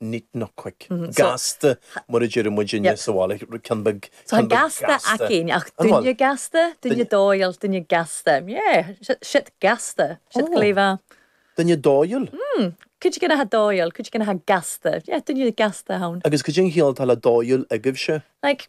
neat not quick. Gasta, mar a deireadh muid inniu sa bhaile, ceann beag gasta. Tá gasta againn, ach duine gasta, duine dóighiúil, duine gasta. Yeah, siad gasta, siad glaofá. Duine dóighiúil? Mm, cuid againn atá dóighiúil, cuid againn atá gasta. Yeah, duine gasta ann. Agus cad é an chiall atá le dóighiúil agaibhse? Like,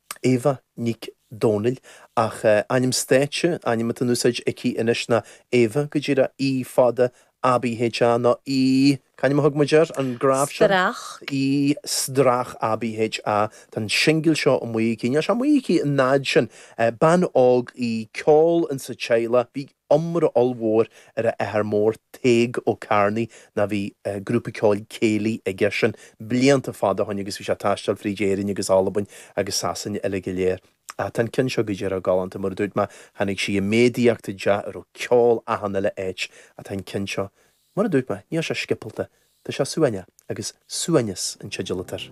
Éabha Nic Dhomhnaill, ach ainm stáitse, ainm atá in úsáid aici anois ná Ava, go díreach, E fada, ABHA nó E, c'ainm a thug muid air, an graf sin? Strach. E Strach, ABHA, tá an singil seo amuigh aici, níl sé amuigh aici an fhad sin. Bean óg í, ceol insa teaghlach. iomrá ollmhór ar a athair mór, Tadhg Ó Cearnaí, ná bhí grúpa ceoil céilí aige sin blianta fada ó shoin agus bhí sé ag taisteal fríd Éirinn agus Albain agus Sasain uilig go léir. Ach tá an ceann seo go díreach galánta, mar a dúirt mé, tháinig sí i méadaíocht i dteach a raibh ceol achan uile áit, ach tá an ceann seo, mar a dúirt mé, níl sé sciobthalta, tá sé suaimhneach, agus Suaimhneas an teideal atá air.